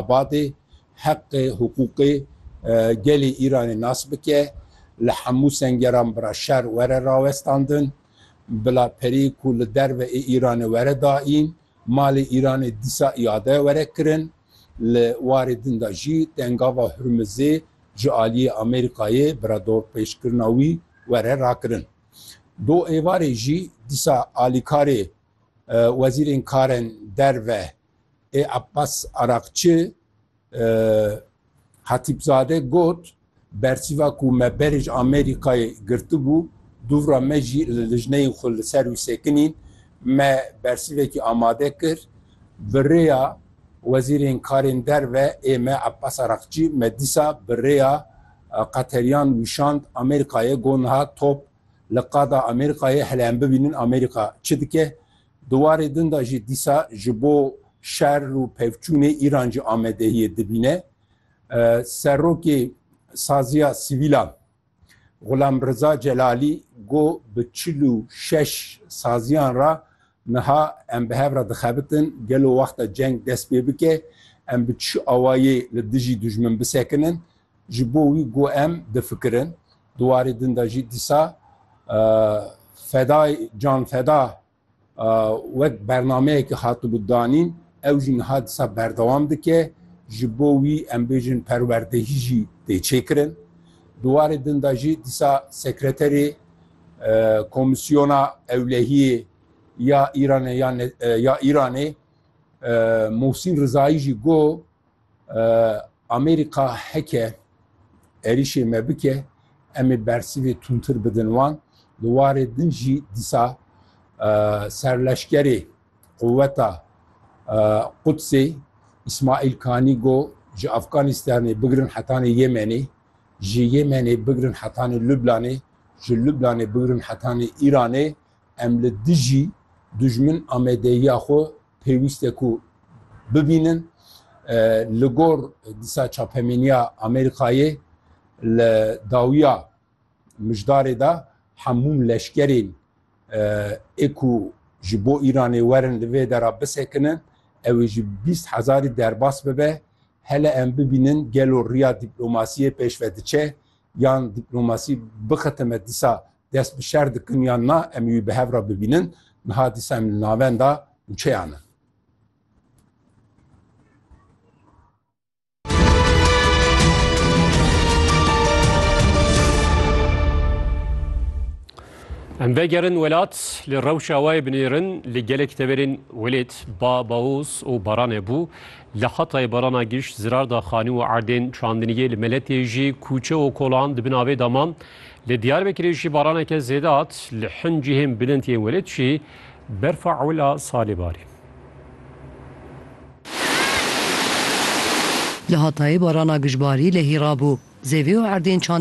Xebatê heqê hiqûqê gelê Îranê nas bike, li hemû sengeran bila şer were rawestandin, bila perê ku li derve ê Îranê were daîn, malê Îranê dîsa îade were kirin. Li warê din de jî tengava Hurmizê ji aliyê Amerîkayê bila dorpêçkirina wî were rakirin. Do êvarê jî dîsa alîkarê wezîrên karên derve ê Abbas Araqçi Hatîpzade got, Bersîva ku me berê ji Amerîkayê girtibû, dûvra me jî li lijneyên xwe li ser wî sekinîn, me bersîvekî amade kir, bi rêya Wezîrên Karên Derve ê me Abbas Araqçi me dîsa bi rêya Qeterîyan wîşand Amerîkayê got niha top li qada Amerîkayê hele em bibînin Amerîka çi dike. Di warê din de jî dîsa ji bo şer û pevçûnê Îran jî amadehiyê dibîne. Serokê Saziya Sivîlan Xulam Riza Celalî got bi çil û şeş saziyan re niha em bi hev re dixebitin gelo wexta ceng dest pê bike em bi çi awayê li dijî dijmin bisekinin ji bo wî got em difikirin. Di warê din de jî dîsa fedayê canfeda wek bernameyekî hatibû danîn, ew jî niha dîsa berdewam dike. Ji bo wî em bêjin perwerdehî jî tê çêkirin. Di warê din de jî dîsa sekreterê Komîsyona Ewlehiyê ya Îranê ya Îranê Mohsîn Rizayî jî got, Amerîka heke êrîşê me bike em ê bersivê tûntir bidin wan. Li warê din jî dîsa serleşkerê quweta Qudsê İsmail Kanî go ji Afganistanê bigirin hetanê Yemenê, ji Yemenê bigirin hetanê Lublanê, ji Lublanê bigirin hetanê Îranê Em li dijî dijmin amedeyiya xwe pêwîst e ku bibînin. Li gor disa çapemeniya Amerîkayê li dawiya mijdarê de hemû leşkerên ê ku ji bo Îranê werin li vê dera bisekinin ew ê ji bîst hezarî derbas bibe. Hele em bibînin gelo riya dîplomasiyê pêşve diçe yan dîplomasî bixitime disa dest bi şer dikin yan na em wî bi hev re bibînin niha dîsa em li navenda nûçeyan in. Em vegerin welat li rewşa wê binêrin li gelek teverên welêt ba baoz û baranê bû li hetayê barana giş zirar da xanî û erdên çandiniyê li meletê jî kûçe û kolan dibin avê daman Li Diyarbekirê jî baraneke zêde hat, li hin cihên bilind yên welêt jî berfa ewil a salê barî. Li Hatayê barana gijbarî lehî rabû. Zêvê û erdên çandî